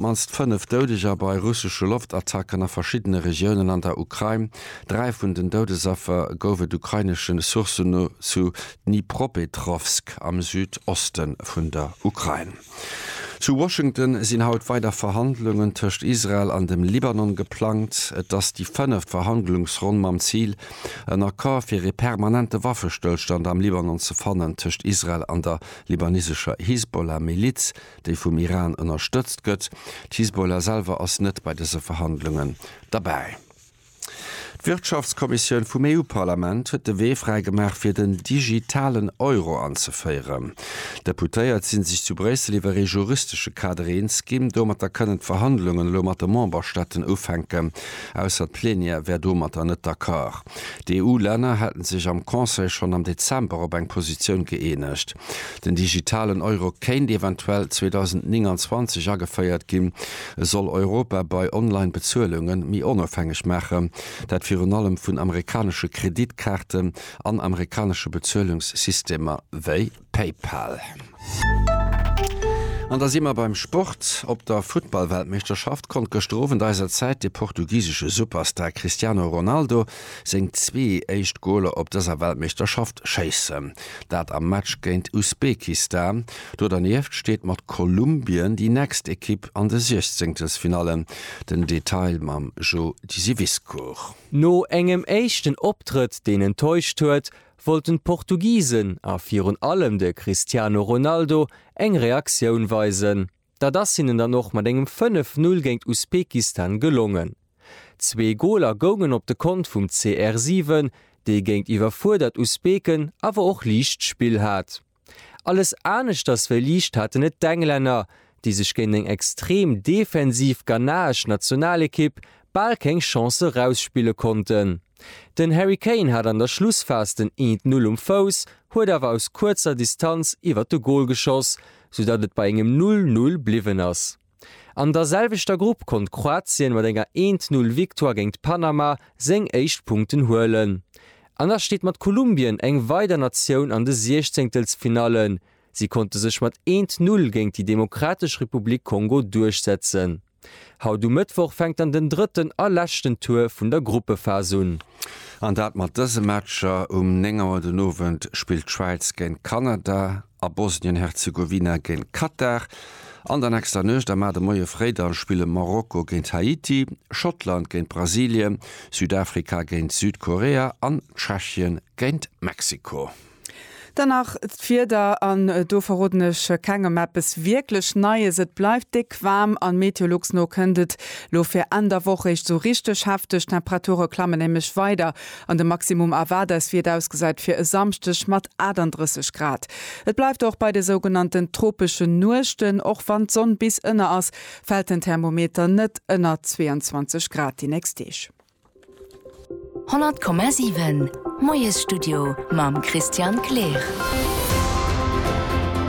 D'mannst fënnef Doudeger bei russesche Loftattacken a verschiddene Regiounen an der Ukrain. Dräi vun den Doudesaffer gouf et ukrainesche Sourcen no zu Dnipropetrowsk am Südoste vun der Ukrain. Zu Washington sinn haut weider Verhandlungen tëscht Israel an dem Libanon geplangt. Et ass déi fënneft Verhandlungsronn mam Zil, en Accord fir ee permanente Waffestëllstand am Libanon ze fannen tëscht Israel an der libanesescher Hisbollah-Miliz, déi vum Iran ënnerstëtzt gëtt. D'Hisbollah selwer ass net bei dëse Verhandlungen derbäi. D'Wirtschaftskommissioun vum EU-Parlament huet de Wee fräi gemaach fir den digitalen Euro anzeféieren. D'Deputéiert si sech zu Bréissel iwwer ee juristesche Kader eens ginn. Domatter kënnen d'Verhandlungen elo mat de Memberstaaten ufänken, ausser d'Plenière wär domatter net d'accord. D'EU-Länner hätten sech am Conseil schonn am Dezember op eng Positioun gëeenegt. Den digitalen Euro kéint eventuell 2029 ageféiert ginn. E soll Europa bei Online-Bezuelunge méi onofhängeg maachen. Dat virun allem vun amerikanesche Kreditkaarten an amerikanesche Bezuelungssystemer wéi. PayPal. An da si mer beim Sport. Op der Futtballweltmeeschterschaft konnt gëschter Owend eiser Zäit de portugisesche Superstar Cristiano Ronaldo seng zwee éischt Goler op dëser Weltmeeschterschaft schéissen. Dat am Match géint Usbekistan. Do dernieft steet mat Kolumbien déi nächst Ekipp an de Siechzenkelsfinallen. Den Detail mam Jo Diseviscourt. No engem éischten Optrëtt, deen enttäuscht huet, wollten d'Portugisen, a virun allem de Cristiano Ronaldo, eng Reaktioun weisen. Dat ass hinnen dann och mat engem 5, 0 géint Usbekistan gelongen. Zwee Goler goungen op de Kont vum CR7, dee géintiwwer fuerdert Usbeken awer och liicht Spill hat. Alles aneschters wéi liicht haten et d'Englänner, déi sech géint eng extrem defensiv ghanaesch Nationalekipp bal keng Chance erausspille konnten. Den Harry Kane hat an der Schlussphas den Eent Null um Fouss, huet awer aus kuerzer Distanz iwwert de Gol geschoss, soudatt et bei engem Null Null bliwwen ass. An der selwechter Grupp konnt Kroatien mat enger 1 Null Victoire géint d'Panama seng éischt Punkten huelen. An da steet mat Kolumbien eng weider Natioun an de Siechzéngtelsfinallen. Si konnte sech mat 1 Null géint déi Demokratesch Republik Kongo duerchsetzen. Haut um Mëttwoch fänkt dann den drëtten a leschten Tour vun der Gruppephas un. An dat mat dëse Matcher, Um 9 Auer den Owend spillt d'Schwäiz géint Kanada. a Bosnien-Herzegowina géint Katar, an der nächster Nuecht a mar de Moie fréi da spille Marokko géint Haiti, Schottland géint Brasilien, Südafrika géint Südkorea an Tschechien géint Mexiko. Dann nach d'Wieder, an do verroden ech kengem eppes wierklech Neies. Et bleift déck waarm, an Meteolux no kënnt et lo fir Enn der Woch eréischt sou richteg hefteg. D'Temperature klammen nämlech weider An de Maximum Averdes virdausgesäit fir e Samschdeg mat 38 Grad. Et bleift och bei de sougenannten tropeschen Nuechten, och wann d'Sonn bis ënner ass, fält den Thermometer net ënner 22 Grad déi nächst Deeg. 100,7 Moiesstudio mam Christian Kleer.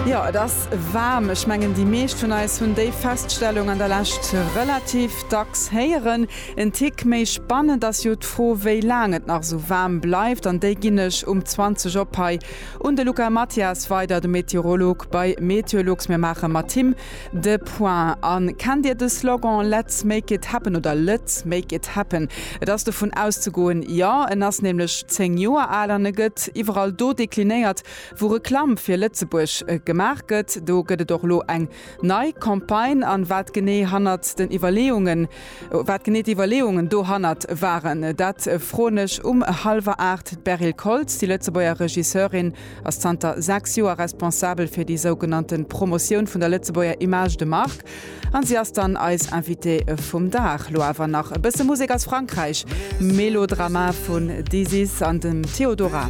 Jo, et ass waarm. Ech mengen déi meescht vun eis hunn déi Feststellung an der Lescht relativ dacks héieren. En Tick méi spannend ass jo d'Fro wéi laang et nach esou waarm bleift an déi ginn ech um 20 op hei un de Luca Mathias weider, de Meteorolog bei Meteolux. Mir maache mat him de Point an kennt Dir de Slogan Let's make it happen oder Lëtz make it happen? Et ass dovun auszegoen, jo en ass nämlech 10 Joer al an e gëtt iwwerall do deklinéiert wou Reklamm fir Lëtzebuerg gemaach gëtt. Do gëtt et och elo eng Nei Campagne an wat genee hannert den Iwwerleeungen, wat genee d'Iwwerleeungen dohannert waren, dat froen ech um hallwer aacht d'Beryl Koltz. Déi Lëtzebuerger Regisseurin ass zanter sechs Joer responsabel fir déi sougenannte Promotioun vun der Lëtzebuerger Image de marque an si ass dann eis Invitée vum Dag. Lo awer nach e bësse Musek aus Frankräich, Melodrama vun Dizzy's an dem Theodora.